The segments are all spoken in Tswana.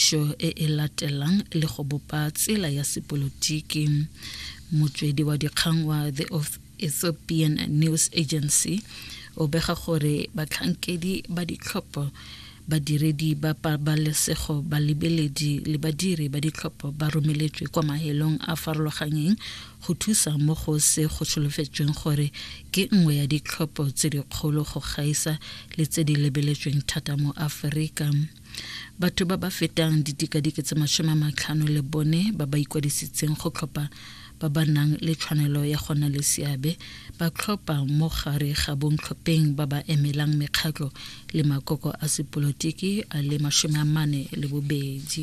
Tiriso e e latelang le go bopa tsela ya sepolotiki. Motswedi wa dikgang wa The Ethiopian News Agency o bega gore batlhankedi ba ditlhopho badiredi ba pabalesego balebeledi le badiri ba ditlhopho ba romeletswe kwa mahelong a farologanyeng go thusa mo go se go solofetsweng gore ke nngwe ya ditlhopho tse dikgolo go gaisa le tse di lebeletsweng thata mo aforika Batho ba ba fetang didikadike tse masome a matlhano le bone ba ba ikwadisitseng go tlhopha ba ba nang le tshwanelo ya go nna le seabe ba tlhopha mo gare ga bontlhopheng ba ba emelang mekgatlho le makoko a sepolotiki a le masome a mane le bobedi.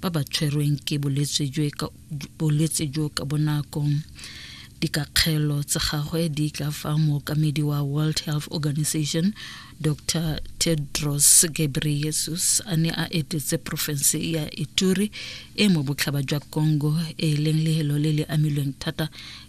ba ba tshwerweng ke bolwetse jo ka bonako dikakgelo tsa gagwe di tla fa mookamedi wa world health organization dr tedros gebreyesus a ne a etetse porofense ya ituri e mo botlhaba jwa congo e leng lehelo le le amilweng thata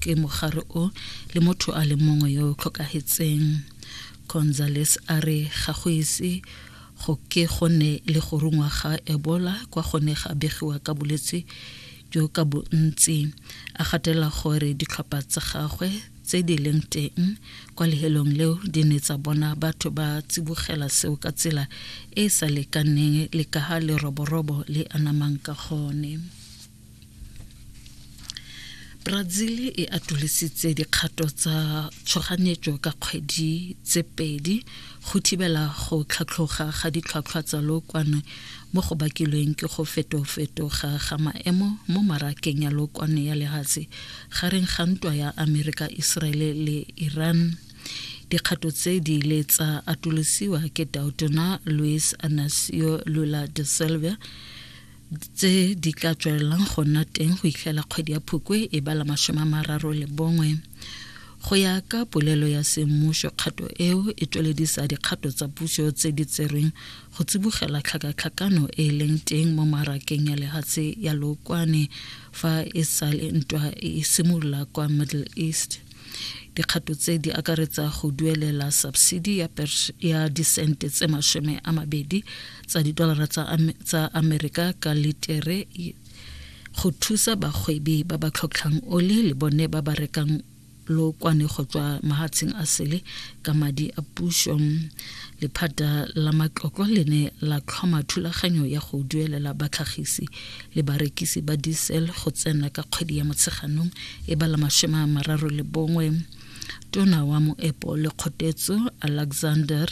ke mogare o le motho a le mongwe yo o tlhokagetseng gonzales a re ga go ise go ke go ne le go rungwa ga ebola kwa go ne ga begiwa ka bolwetse jo ka bontsi a gatela gore ditlhopha tsa gagwe tse di leng teng kwa lehelong leo di ne tsa bona batho ba tsibogela seo ka tsela e e sa lekaneng le ka ga leroborobo le anamang ka gone Brazil e atolositse dikgato tsa tshoganyetso ka kgwedi tse pedi go thibela go tlhatlhoga ga ditlhwatlhwa tsa lookwane mo go bakilweng ke go fetofetoga ga maemo mo marakeng ya lookwane ya lehatshe gareng ga ntwa ya Amerika Israel le Iran dikgato tse di ile tsa atolosiwa ke Dautona Luis Anacio Lula de Silva tse di tla tswelelang go nna teng go itlhela kgwedi ya phukwe e bala masome a mararo le bongwe go ya ka polelo ya semmuso kgato eo e tsweledisa dikgato tsa puso tse di tserweng go tsibogela tlhakatlhakano e e leng teng mo marakeng ya lehatshe ya lookwane fa e sale ntwa e simolola kwa middle east dikgato tse di akaretsa go duelela subsidi ya, ya disente tse masome a mabedi tsa didolara tsa amerika ka litere go thusa bagwebi ba ba tlhotlhang oli le bone ba ba rekang lookwane go tswa mahatsheng a sele ka madi a puso lephata la matlotlo le ne la tlhoma thulaganyo ya go duelela batlhagisi le barekisi ba diesel go tsena ka kgwedi ya motsheganong e ba la masome a mararo le bongwe tona wa moepo le kgotetso alexander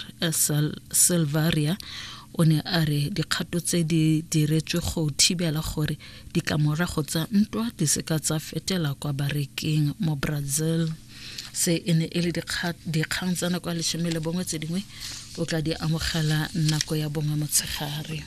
silvaria o ne a re dikgato tse di diretswe go thibela gore ditlamorago tsa ntwa di seka tsa fetela kwa bareking mo brazil se e ne e le dikgang tsa nako ya lesome le bongwe tse dingwe o tla di amogela nako ya bongwe motshegare